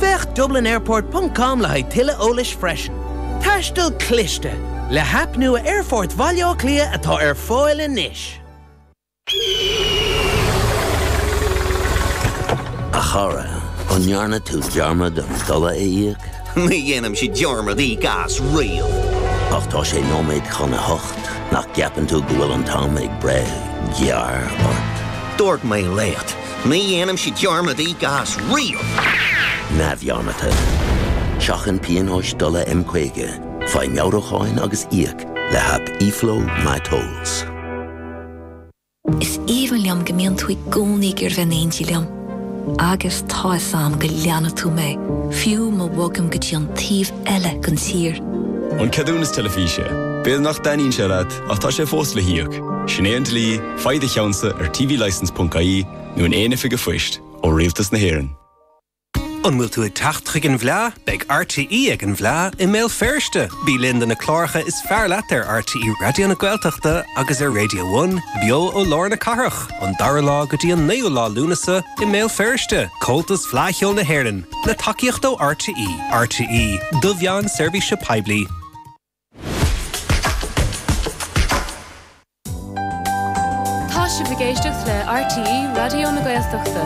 Féach dublinairport.com le haghaidh tuilleadh eolais freisin. Taisteal cliste! Le haip nua Aerfort Bhaile Átha Cliath atá ar fáil anois. A chara, an ndearna tú dearmad an dola a íoc? Ní dhéanaimse dearmad íoc as riamh. Ach tá sé nóiméad chun a hocht, nach gceapann tú go bhfuil an t-am ag breith gearr ort? Dúirt mé leat, Ní dhéanaimse dearmad íoc as riamh! neamhdhearmadta. Seachain pionóis dola M50, faigh meabhrúcháin agus íoc le haip eFlow MyTolls. Is aoibhinn liom go mbíonn tú i gcónaí ag iarraidh bheith in éindí liom. Agus tá fhios a'm go leanfaidh tú mé, fiú má bhogaim go dtí an taobh eile den tír. An ceadúnas teilifíse. B'fhéidir nach dtaitníonn sé leat, ach tá sé fós le híoc. Sin é an dlí. Faigh do cheannsa ar tvlicence.ie nó in aon oifig a'phoist ó Rialtas na hÉireann. An bhfuil tú ag teacht chuig an bhFleadh? Beidh RTÉ ag an bhFleadh i mBéal Feirste! Bí linn do na cláracha is fearr leat ar RTÉ Raidió na Gaeltachta agus ar Radio One, beo ó lár na cathrach, ón 2ú lá go dtí an 9ú lá Lúnasa i mBéal Feirste. Comhaltas Fleadh Cheoil na hÉireann, le tacaíocht ó RTÉ. RTÉ, do mheáin seirbhíse poiblí. Tá sibh ag éisteacht le RTÉ Raidió na Gaeltachta.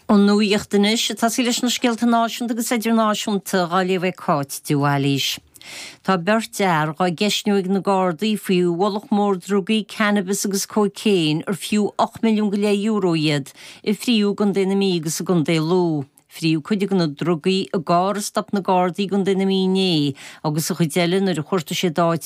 An nuacht anois, tá sé leis na scéalta náisiúnta agus idirnáisiúnta á léamh ag Cáit de Bhailis. Tá beirt fhear dhá gceistniú ag na Gardaí faoi mhullach mór drugaí, cannabis agus cóicéin, ar fiú ocht milliún go leith euro iad, a fríothadh i gContae na Mí agus i gContae Lú. Fríothadh cuid de na drugaí i gcarr a stop na Gardaí i gContae na Mí inné agus an chuid eile nuair a chuartaigh siad áit